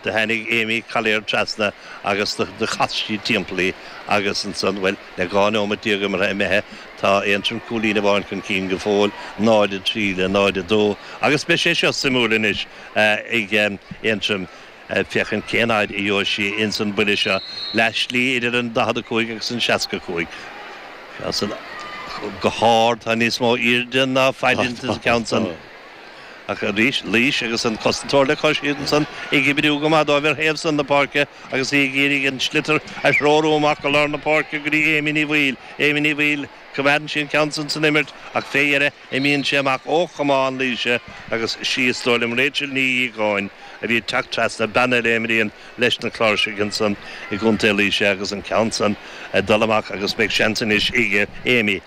Do tháinig Amy Collier trasna agus do chas sí timpeall í agus ansan, bhuel, le 12 neomat imeartha imithe, tá Aontroim cúilín amháin chun cinn go fóill, 0, 3 le 0, 2, agus beidh sé seo suimiúil anois ag Aontroim féachaint cén fhaid a gheobhaidh sí ins an mbuille seo, leath slí idir an 45 agus an 65. Go hard, tá níos mó aoirde ná faid ins an gceann san. Ach arís, Laois agus an cosantóir le cois ansan ag oibriú go maith dóibh ar thaobh san na páirce agus í ag iarraidh an sliotar a threorú amach go lár na páirce go dtí Amy Ní Bhaoill. Amy Ní Bhaoill, coimeádann sí an ceann san san imirt ach fé dheireadh imíonn sé amach ó chamán Laoise agus sí, is dóigh liom, Rachel Ní Dhíogáin a bhí ag teacht trasna, bean eile a imríonn leis na Cláirsigh ansan i gContae Laoise agus an ceann san ag dul amach agus beidh seans anois ag Amy.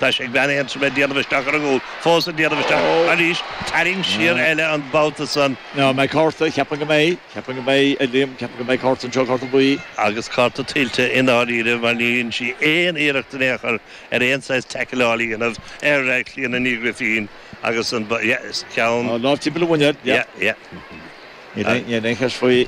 Tá sé ag bean Aontroma ag déanamh isteach ar an gcúl, fós ag déanamh isteach, arís, tarraingt siar eile an babhta san. An mbeidh cárta? Ceapaim go mbeidh. Ceapaim go mbeidh, a Liam. Ceapaim go mbeidh cárta anseo, cárta buí. Agus cárta tuillte i ndáiríre mar níor dhein sí aon iarracht in aon chor ar aon saghas teicealeáil a dhéanamh ar Chlíona Ní Ghrifín agus an ceann An lámh timpeall a mhuinéil, yep. Níl aon cheist faoi.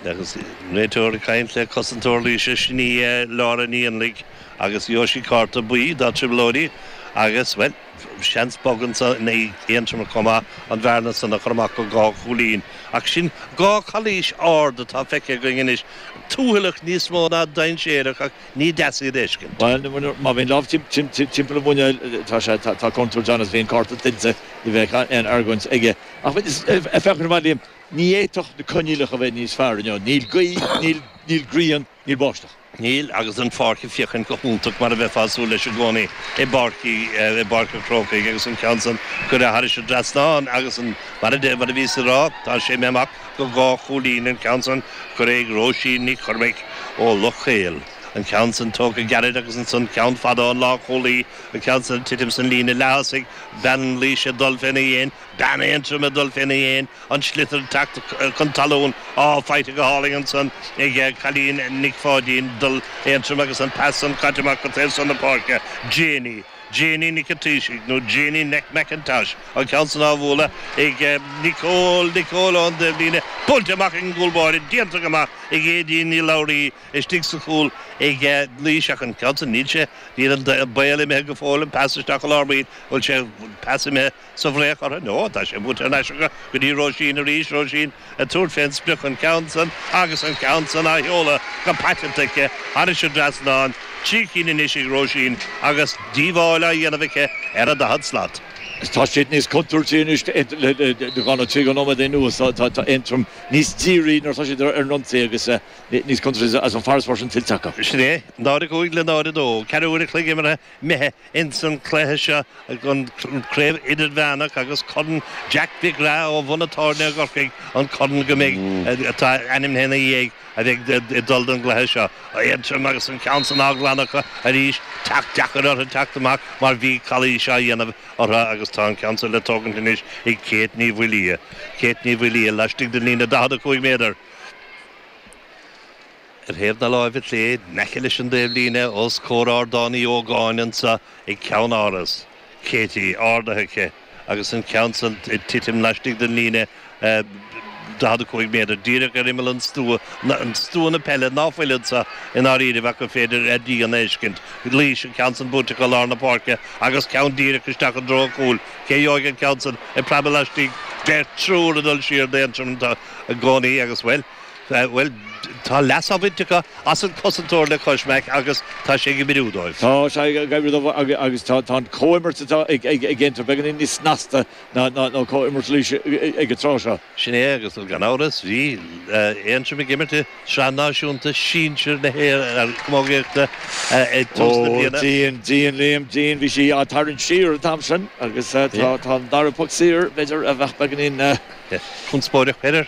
Agus réiteoir ag caint le cosantóir Laoise, sin í Laura Ní Fhionnlaigh. Agus gheobhaidh sí cárta buí dá trioblóidí agus, bhuel, seans bog ansan ag Aontroim chomh maith, an bhearna san a chur amach go dhá chúilín. Ach sin dhá chalaois ard atá feicthe againn anois, tuathallach níos mó ná dainséarach ach ní deas iad a fheiscint. Bhuel, má bhíonn lámh timpeall an mhuineáil, tá sé, tá contúirt ann is bhíonn cárta tuillte, ní bheadh aon argóint aige. Ach bhuel, is, ag féachaint amach, Liam, ní fhéadfadh na coinníollacha a bheith níos fearr, you know, níl gaoth, níl grian, Níl báisteach. Níl, agus an pháirc ag féachaint go hiontach mar a bheifeá ag súil leis i gcónaí i bPáirc an Chrócaigh agus an ceann san curtha thairis an dtrasnán agus an, mar a deir, mar a bhíos ag rá, tá sé imithe amach go dhá chúilín an ceann san curtha ag Róisín Nic Chormaic ó Loch Caol, an ceann san tógtha gairid agus ansan ceann fada ón lán-chúlaí, an ceann san ag titim san líne leath-thosaigh, bean Laoise ag dul féna dhéin, Bean Aontroma ag dul féna dhéin, an sliotar ag teacht chun talún, á, faighte go hálainn ansan ag Cailín Nic Pháidín, Dul Aontroim agus an pas san caite amach go taobh san na páirce. Janie. Janie Nic an Taoisigh, nó Janie McIntosh, an ceann san á bhualadh ag Nicole, Nicole ón dtaobh líne, buailte amach ag an gcúl báire, déanta go maith ag Aedín Ní Labhraí, istigh sa chúl ag Laois ach an ceann san, níl sé, níl an baol imithe go fóill, an pas isteach i lár baill, bhuel sé an pas imithe, Sa bhfraoch orthu, nó tá sé buailte thar n-ais acu go dtí Róisín arís, Róisín ag tabhairt fén sprioc an ceann san agus an ceann san á sheoladh go paiteanta aici thairis an dtrasnán, trí cinn anois ag Róisín agus díobháil á dhéanamh aici ar a daichead slat. Tá siad níos contúirtí anois le dhá nó trí nóiméad anuas, tá Aontroim níos dírí nuair atá siad ar an ionsaí agus níos contúirtí agus an farasbarr sin tuillte acu. Sin é, 0-5 le 0-2, ceathrú uair an chloig imeartha, imithe Ins an cluiche seo, an Craobh Idirmheánach agus Corn Jack Mhic Craith ó Bhun an Tábhairne i gCorcaigh an corn go mbeidh atá ainmnithe ina dhiaidh a bheidh ag dul don gcluiche seo. Aontroim agus an ceann san á glanadh acu arís. Teacht, deacair orthu teacht amach mar bhí calaois á dhéanamh orthu agus tá an ceann san le tógaint anois ag Céit Ní Mhaoildhia. Céit Ní Mhaoildhia laistigh den líne 45 méadar. Ar thaobh na láimhe clé, in aice leis an dtaobhlíne, os comhair Ardán Uí Ógáin anseo ag ceann Áras Katie, ardaithe aici agus an ceann san ag titim laistigh den líne 45 méadar, díreach ar imeall an stua, an stua na peile, ná fuil anseo i ndáiríribh ach gur féidir a rian a fheiscint, Laois, an ceann san buailte go lár na páirce agus ceann díreach isteach i dtreo an chúil. Cé a gheobhaidh an ceann san ag preabadh laistigh? Beirt, triúr ag dul siar d'Aontroim i gcónaí agus, bhuel. Bhuel, tá leas á bhaint acu as an cosantóir le cois Mac agus tá sé ag oibriú dóibh. Tá sé ag oibriú dóibh agus tá an comhimirt atá ag Aontroim beagáinín níos snasta ná comhimirt Laois ag an tráth seo. Sin é agus gan amhras bhí Aontroim ag imirt i Sraith Náisiúnta Sinsear na hÉireann Camógaíochta ag tús na bliana. Ó, dian, dian, Liam, dian. Bhí sí á tarraingt siar an t-am sin agus tá an dara poc saor, b'fhéidir, a bheadh beagáinín conspóideach, b'fhéidir.